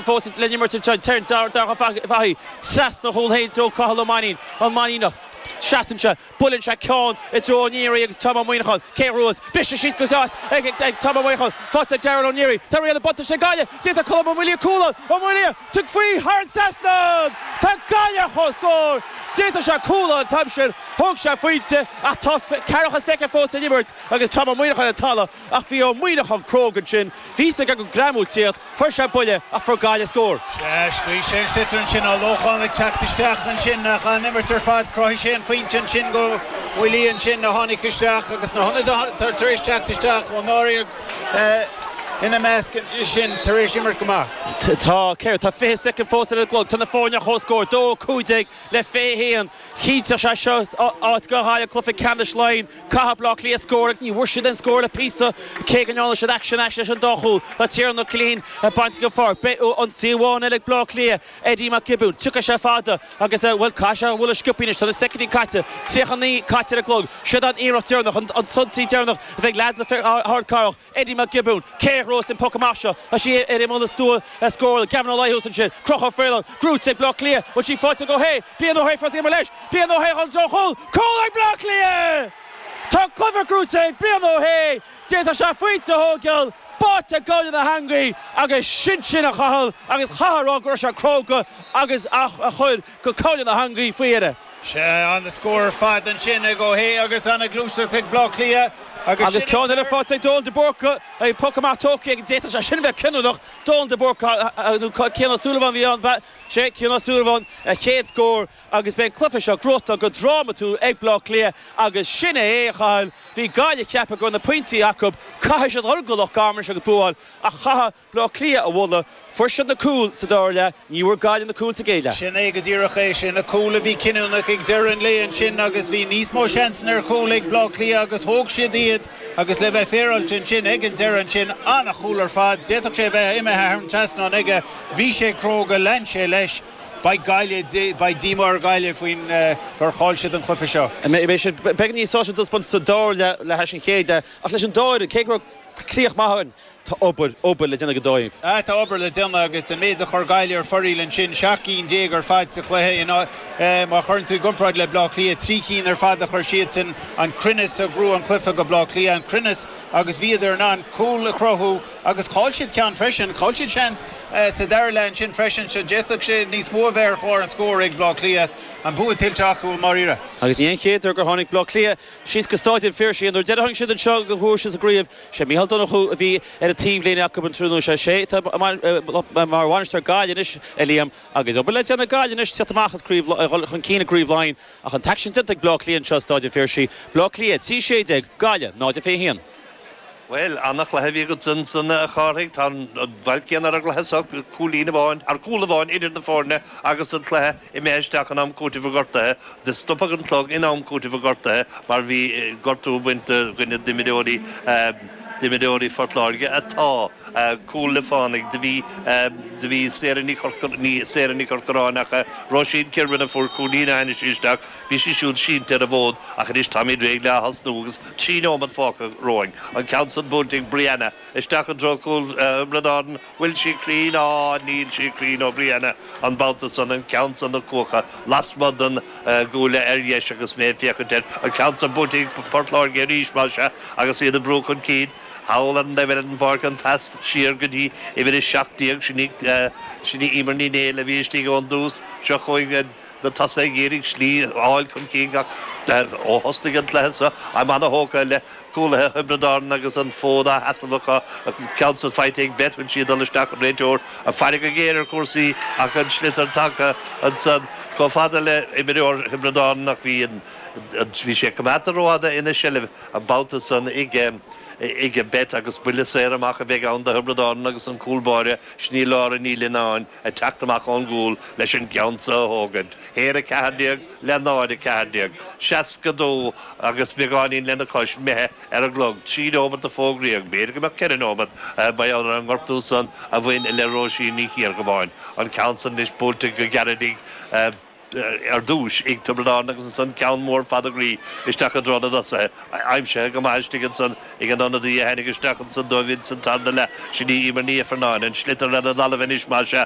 fós ag le n-imirt ansin. Téann Darach Fahey trasna chúl Shéain Joe Cathal Ó Mainín, an Mainíneach. Seasann sé, buaileann sé ceann i dtreo Ó Neary agus Tom Ó Muíneacháin, cé ghnóthós, briseadh síos go deas ag Tom Ó Muíneacháin. Faighte ag Darragh Ó Neary. Tá riail an bhuntáiste ag Gaillimh. D'fhéadfadh Colm Ó Maolmhuaidh cúl a fháil. Ó Maolmhuaidh, tug faoi thar an trasnán! Tá Gaillimh ar chomhscór! D'fhéadfadh sé cúl an t-am sin, thóg sé a phointe ach tá ceathracha soicind fós le n-imirt agus Tom Ó Muíneacháin ar an talamh. Ach bhí Ó Muíneacháin cróga ansin, bhí's aige go mbuailfí é, fuair sé buille ach fuair Gaillimh scór. Sea, scaoil sé an sliotar ansin, an Lóchán ag teacht isteach ansin ach an imirt ar fad, chruthaigh sé an phointe ansin do Mholloy ansin a tháinig isteach agus na hionadaithe tar éis teacht isteach Ó Náraigh ina measc ansin tar éis imirt go maith. Tá, céard? Tá 20 soicind fós ar an gclog, tá na foirne ar chomhscór, 2-15 le 21. Chinnteodh sé seo áit do Ghaillimh i gcluiche ceannais Laighean. Caithfidh Bleá Cliath scór agus ní bhfuair siad aon scór le píosa, cé go ndearna siad aicsean ais leis an dá chúl. Tá Tiernan Ó Cillín á bhaint den pháirc. Beidh ionsaí amháin eile ag Bleá Cliath, Eddie Mac Giobúin. Tiocfaidh sé fada agus, bhuel, caithfidh sé é a bhualadh sciobtha anois. Tá na soicindí caite, 39 caite ar an gclog. Siod an iarracht deireanach, an t-ionsaí deireanach a bheidh ag leaids na hArdcathrach. Eddie Mac Giobúin, cé ghnóthós an poc amach seo, Tá sí ar imeall na stua a scór, Gavin Ó Laoi thuas ansin, Crochadh a Phraoileán, gnóthaithe ag Bleá Cliath, bhfuil sí faighte ag Ó hAodha, Brian Ó hAodha fós ag imeacht leis, Brian Ó hAodha, seans ar chúl, cúl ag Bleá Cliath! Tá an cluiche gnóthaithe ag Brian Ó hAodha, d'fhéadfadh sé pointe a thógáil, báite i ngabhal na heangaí agus sin sin a Chathail agus chaithfeá a rá go raibh sé cróga agus é a chur go gabhal na heangaí faoi dheireadh. Sea, an-scór ar fad ansin ag Ó hAodha agus an-ghluaisteacht ag Bleá Cliath agus Agus sin ceann eile faighte ag Donal de Búrca, ag poc amach tógtha aige, d'fhéadfadh sé sin a bheith cinniúnach. Donal de Búrca nó Cian Ó Súilleabháin a bhí ann. Sea, Cian Ó Súilleabháin, a chéad scór agus beidh an cluiche seo gnóthaithe go drámatúil ag Bleá Cliath agus sin é é, a Chathail, bhí Gaillimh ag ceapadh go raibh na pointí acu, caithfidh siad dhul go Loch Garman anois agus bua a fháil ach caithfear. Bleá Cliath a mholadh. Fuair siad na cúil sa dara leath, ní bhfuair Gaillimh na cúil sa gcéad leath. Sin é go díreach é. Sé na cúil a bhí cinniúnach ag deireadh an lae ansin agus bhí níos mó seansanna ar chúil ag Bleá Cliath agus thóg siad iad agus le bheith féaráilte ansin, ag an deireadh ansin, an-chúl ar fad, d'fhéadfadh sé a bheith imithe thar an trasnán aige, bhí sé cróga, lean sé leis. Beidh Gaillimh, beidh díomá ar Ghaillimh faoin, gur chaill siad an cluiche seo. Beidh siad beagáinín sásta an taispeántas sa dara leath le hais an chéad leath ach leis an dá fhoireann, cé go raibh críoch maith againn, Tá obair, obair le déanamh ag an dóigh. Aye, tá obair le déanamh agus an méid a chuir Gaillimh ar fóraoil ansin, seacht gcinn déag ar fad sa chluiche, in, má chuireann tú i gcomparáid le Baile Átha Cliath, trí cinn ar fad a chuir siadsan, an cruinneas a ghnóthaigh an cluiche do Baile Átha Cliath, an cruinneas agus bhíodar in ann cúil a chruthú agus chaill siad ceann freisin, chaill siad seans sa dara leath ansin freisin so d'fhéadfadh sé níos mó a bheith ar chlár an scóir ag Baile Átha Cliath, an bua tuillte acu i ndáiríre. Agus ní hé an chéad uair gur tháinig Baile Átha Cliath síos go Stáid an Phiarsaigh, an uair dheiridh a tháinig siad anseo ghnóthaigh siad sa gcraobh, Sé Micheál Donnchú a bhí ar an taobhlíne acu an tráthnóna seo. Sé atá mar bhainisteoir Gaillimh anois, a Liam, agus obair le déanamh ag Gaillimh anois tíocht amach as craobh, dul chun cinn i gcraobh Laighean. Ach an t-aicsean déanta ag Bleá Cliath anseo i Staid an Phiarsaigh. Bleá Cliath 3 16 Gaillimh 0 21. Bhuel, an-chluiche a bhí agat ansan, a Chárthaigh. Tá an bhail céanna ar an gcluiche seo, cúilín amháin, ar chúl amháin idir na foirne agus an cluiche. imithe isteach in am cúitimh a gortaithe, do stopadh an clog in am cúitimh a gortaithe mar bhí gortú bainte do dhuine d'imreoirí d'imreoirí Phort Láirge atá cúl le fánaidh, do bhí do bhí Sarah Ní Chorca Ní Sarah Ní Chorcoráin ach Róisín Kirwan a fuair cúilín ó tháinig sí isteach, bhí sí siúd sínte ar an bhfód ach anois táimid réidh le ath-thosnú agus trí neomat fágtha romhainn. An ceann san buailte ag Brianna. Isteach i dtreo cúl Thiobraid Árann. Bhfuil sé cruinn? Á, níl sé cruinn ó Bhrianna, an babhta san, an ceann san na cuacha lasmuigh den gcuaille ar dheis agus mé ag féachaint air, an ceann san buaite ag Port Láirge arís, más ea, agus iad ag brú chun cinn thall ar an dtaobh eile den bpáirc, an pas siar go dtí uimhir a seacht déag, sin í Emer Ní Néill a bhí istigh ón dtús, seo chugainn. na tosaigh ag iarraidh slí a fháil chun cinn ach ó thosnaigh an cluiche seo táim ana-thógtha le cúlaithe Thiobraid Árann agus an fód á sheasamh acu, an ceann san faighte ag Beth bhfuil sí ag dul isteach an réiteoir ag faire go géar ar chúrsaí ach an sliotar tagtha ansan chomh fada le imreoir Thiobraid Árann ach bhí bhí sé coimeádta rófhada ina seilbh an babhta san ag ag Beth agus buille saor amach a bheidh ann do Thiobraid Árann agus an cúl báire sin í Laura Ní Lionnáin. ag teacht amach ón gcúl leis an gceann so a thógaint, 1 14 le 0 14, 62, agus beagáinín lena cois imithe ar an gclog, trí neomat a fógraíodh, b'fhéidir go mbeadh ceithre neomat, mar gheall ar an ngortú san a bhain le Róisín Ní Chiardhubbháin, an ceann san anois buailte go gairid ar dtúis ag Tiobraid Árann agus ansan ceann mór fada groí isteach i dtreo na dtosaithe, aimsithe go maith istigh ansan ag an ionadaí a tháinig isteach ansan dóibh ins an tarna leath, sin í Emer Ní Ifearnáin, an sliotar ar an dtalamh anois, más ea.